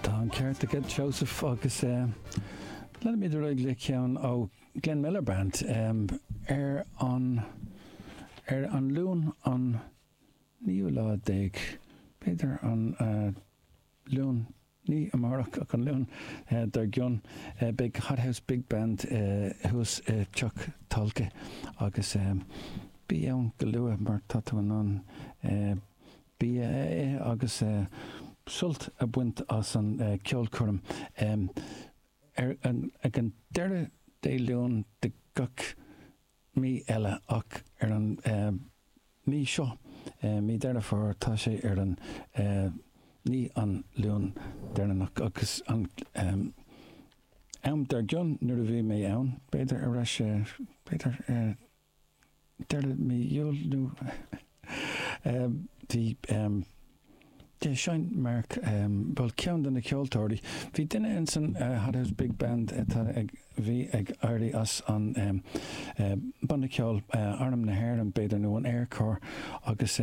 Tá an ceart agat Seosamh agus leanfaimid ar aghaidh le ceann ó Glenn Miller Band ar an ar an Luan an naoú lá déag, b'fhéidir an Luan ní amárach ach an Luan dár gcionn, beidh Hot House Big Band thuas i Teach Tolka agus bí ann go luath mar tá tú in ann bia a ithe agus sult a bhaint as an ceolchoirm ag an deireadh Dé Luain de gach mí eile ach ar an mí seo, mí Dheireadh Fómhair, tá sé ar an ní an Luan deireanach agus an ceann dár gcionn nuair a bhí mé ann, b'fhéidir, arís, b'fhéidir. deireadh mí Iúil nó bhí de sheinn Mark bhuel ceann de na ceoltóirí. Bhí duine insan Hothouse Big Band atá ag bhí ag éirí as an banna ceol Arm na hÉireann b'fhéidir nó an Air Corps agus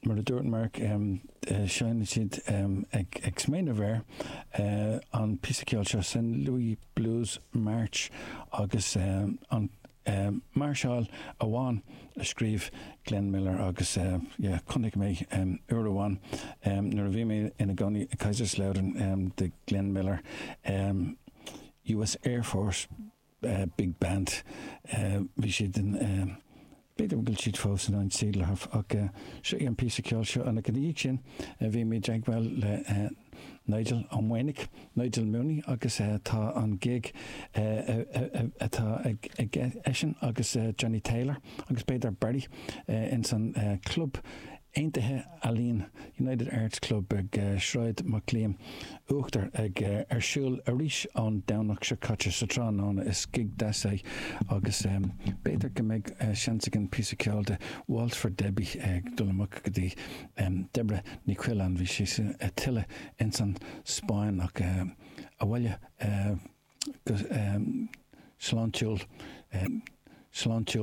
Mar a dúirt Mark, seinn siad ag smaoineamh air an píosa ceoil seo, St Louis Blues March, agus an mairseáil amháin a scríobh Glenn Miller agus chonaic mé uair amháin nuair a bhí mé ina gcónaí i Kaiserslautern, The Glenn Miller US Air Force. big band. Bhí siad ann, b'fhéidir go bhfuil siad fós insan saol ar ndóigh ach seo í an píosa ceoil seo. Ach ina dhiaidh sin, beimid ag bualadh le Nigel Ó Maonaigh, Nigel Mooney agus tá an gig atá aige, eisean agus Johnny Taylor agus b'fhéidir Barry ins an Club Aontaithe, Ealaíon, United Arts Club ag Sráid Mac Liam, Uachtar, ag ar siúl arís an Domhnach seo a cúig sa tráthnóna is gig deas é agus b'fhéidir go mbeidh seans againn píosa ceoil de Waltz for Debbie ag dul amach go dtí Deborah Ní Choileáin. Bhí sí ag taisteal ins an Spáinn ach abhaile go sláintiúil.